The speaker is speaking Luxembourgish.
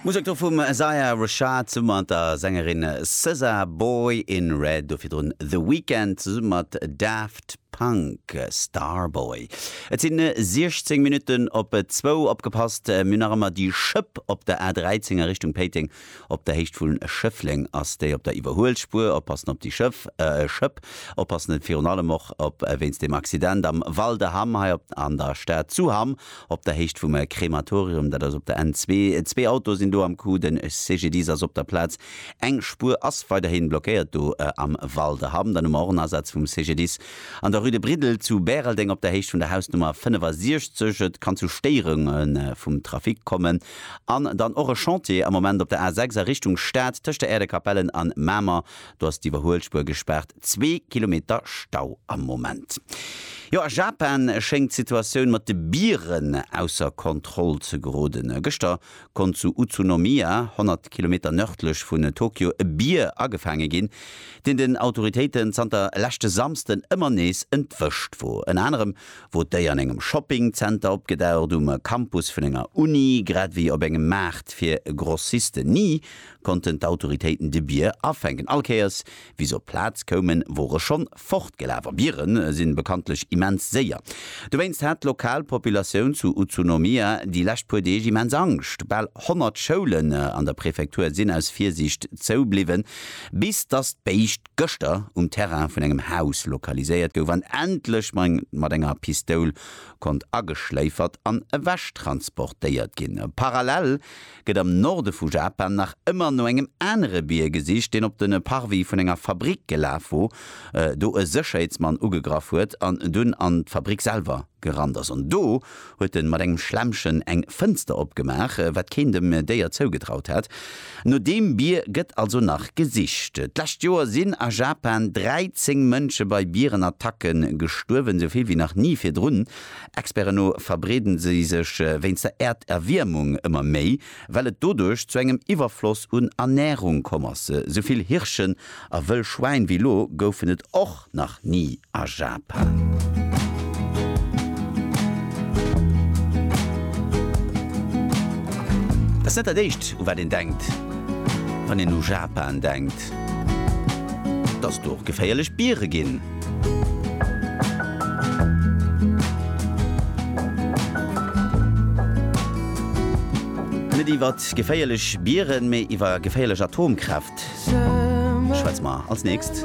Musek do vum Isaiah Rashad zesumme mat der Sängerin SZA, Boy in Red, do virdrun The Weeknd zesumme mat Daft Punk, Starboy. Et sinn 16 Minutten op zwou. Opgepasst, mir hunn nach ëmmer déi Schëpp op der A13 a Richtung Péiteng Op der Héicht vun Schëffleng ass déi op der Iwwerhuelspuer. Oppassen op déi Schëff, Schëpp oppassen et virun allem och op wéinst dem Accident am Val de Hamm hei op an der Stad zu Hamm op der Héicht vum Krematorium. Dat ass op der N zwee. Zwee Autoe sinn do am Coup. De CGDIS ass op der Plaz. Eng Spuer ass weiderhi blockéiert do am Val de Hamm. Dann hu mer och en Asaz vum CGDIS an der Rue de Briddel zu Bäreldeng op der Héicht vun der Hausnummer 65. Et kann zu Stéierunge vum Trafic kommen. An dann och e Chantier am Moment op der A 6 a Richtung Stad tëscht der Äerdekapellen an Mamer. Do ass d'Iwwerhuelspuer gespaart, zwee Kilometer Stau am Moment. Jo, a Japan schéngt d'Situatioun mat de Bieren ausser Kontroll ze geroden. Gëschter konnt zu Utsunomiya, 100 Kilometer nërdlech vun Tokio, e Bier agefaange ginn, deen den Autoritéiten zanter leschte Samsden ëmmer nees entwëscht wor. Ënner anerem wor d'Déier an engem Shoppingzenter opgedaucht, um Campus vun enger Uni, grad wéi op engem Maart fir Grossisten. Ni konnten d'Autoritéiten de Bier afänken. All Kéiers, wéi se op d'Plaz koumen, wor e schonn fortgelaf. A Biere sinn bekanntlech immens séier. Dowéinst hat d'lokal Populatioun zu Utsunomiya déi lescht puer Deeg immens Angscht. Bal 100 Schoulen an der Prefektur sinn aus Virsiicht zou bliwwen, bis datt d'Béischt gëschter um Terrain vun engem Haus lokaliséiert gouf an endlech mat enger Pistoul konnt ageschléifert an ewechttransportéiert ginn. Parallel gëtt am Norde vu Japan nach ëmmer no engem anere Bier gesicht, deen op de Parvis vun enger Fabrick gelaf wor, do e Sécherheetsmann ugegraff huet an dunn an d'Fabrick selwer gerannt ass. An do huet en mat engem Schlemmchen eng Fënster opgemaach, wat keen dem Déier zougetraut hat. No deem Bier gëtt also nach gesicht. D'lescht Joer sinn a Japan 13 Mënsche bei Bierenattacke gestuerwen, esou vill wéi nach ni virdrun. Experten no verbreede si sech wéinst der Äerderwiermung ëmmer méi. Well et doduerch zu engem Iwwerfloss un Ernährung komm ass, se sou vill Hirschen a wëll Schwäin wéi lo goufen et och nach ni a Japan. Dat ass net dat éischt u wat een denkt wann een u Japan denkt. Gebitt. Dass do och geféierlech Biere ginn. Net iwwer geféierlech Bieren, mee iwwer geféierlech Atomkräft schwätze mer als nächst.